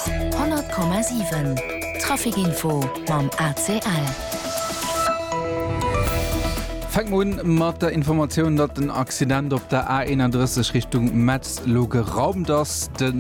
100,7 Traficinfo mam ACL. Fänke mer un mat der Informatioun, datt en Accident op der A 31 Richtung Metz elo geraumt ass. De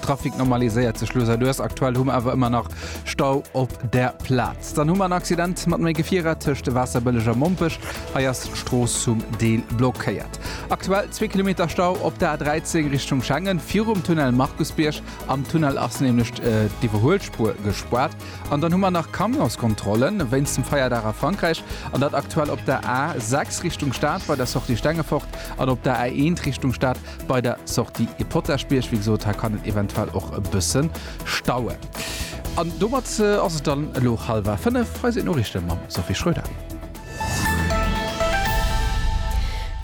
Trafic normaliséiert sech elo säit-Ouest. Aktuell hu mer awer ëmmer nach Stau op där Plaz. Dann hu mer en Accident mat méi Gefierer tëscht Waasserbëlleg a Mompech. Hei ass d'Strooss zum Deel blockéiert. Aktuell zwee Kilometer Stau op der A13 Richtung Schengen, virum Tunnel Markusbierg. Am Tunnel ass nämlech d'Iwwerhuelspuer gespaart. An dann hu mer nach Camionskontrollen wéinst dem Feierdag a Frankräich. An dat aktuell op der A6 Richtung Stad bei der Sortie Stengefort an op der A1 Richtung Stad bei der Sortie Potaschbierg. Wéi gesot, hei kann et eventuell och e bësse stauen. An domat ass et dann elo hallwer fënnef. Hei sinn d'Noriichte mam Sophie Schröder.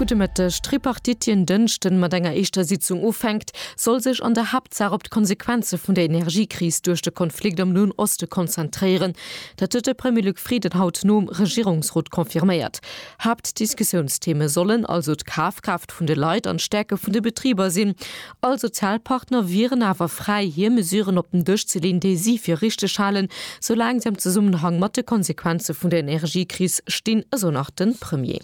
Gudde Mëtteg. D'Tripartite, déi en Dënschden mat enger éischter Sitzung ufänkt, soll sech an der Haaptsaach op d'Konsequenze vun der Energiekris duerch de Konflikt am Noen Oste konzentréieren. Dat huet de Premier Luc Frieden haut nom Regierungsrot confirméiert. Haaptdiskussiounstheme sollen also d'Kafkraaft vun de Leit an d'Stäerke vun de Betriber sinn. All Sozialpartner wieren awer fräi, hir Mesuren op den Dësch ze leeën, déi si fir richteg halen, soulaang se am Zesummenhang mat de Konsequenze vun der Energiekris stinn, esou nach de Premier.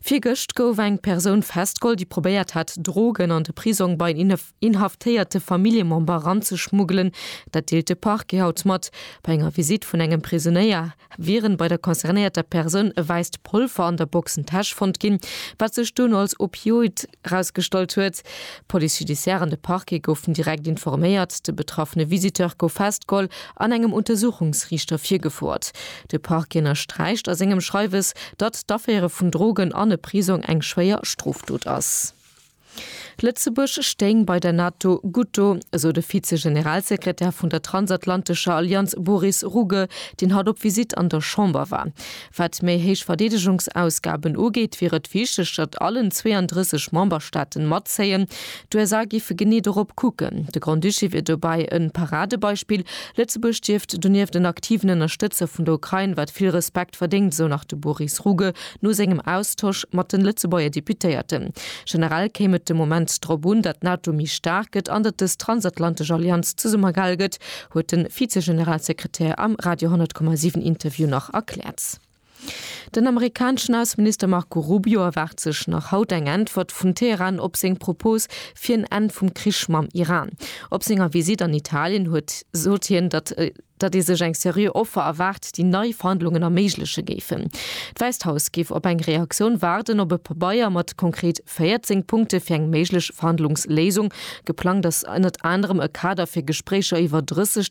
Virgëscht gouf eng Persoun festgeholl, déi probéiert hat, Drogen an de Prisong bei en inhaftéierte Familljemember eranzeschmuggelen. Dat deelt de Parquet haut mat. Bei enger Visitt vun engem Prisonéier wieren bei der concernéierter Persoun e wäisst Polver an der Boxentäsch fonnt ginn, wat sech dunn als Opioid erausgestallt huet. D'Police judiciaire an de Parquet goufen direkt informéiert. De betraffene Visiteur gouf festgeholl an engem Untersuchungsriichter virgefouert. De Parquet ënnersträicht a sengem Schreiwes, datt d'Aféiere vun Drogen an e Prisong eng schwéier Strofdot ass. Lëtzebuerg stéing bei der NATO gutt do, esou de Vize-Generalsekretär vun der transatlantescher Allianz Boris Rugge, deen haut op Visitt an der Chamber war. Wat méi héich Verdeedegungsausgaben ugeet, wier et wichteg, datt allen 32 Memberstaaten matzéien. D'USA géife genee dorop kucken. De Grand-Duché wier dobäi e Paradebeispill. Lëtzebuerg dierft donieft en aktiven Ënnerstëtzer vun der Ukrain, wat vill Respekt verdéngt, esou nach de Boris Rugge. No sengem Austosch mat de Lëtzebuerger Deputéierten. Generell kéim et de Moment drop un, datt d'NATO méi staark gëtt an datt dës transatlantesch Allianz zesummegehal gëtt, huet de Vizegeneralsekretär am Radio 10,7 Interview nach erkläert. Den amerikaneschen Ausseminister Marco Rubio erwaart sech nach haut eng Äntwert vun Teheran op seng Propos fir en Enn vum Krich mam Iran. Op senger Visitt an Italien huet sot hien, datt. datt ee sech eng seriö Offer erwaart, déi nei Verhandlungen erméigleche géifen. D'Wäisst Haus géif op eng Reaktioun waarden, ob e Pabeier mat konkret 14 Punkte fir eng méiglech Verhandlungsléisung, geplangt ass ënnert anerem e Kader fir Gespréicher iwwer 30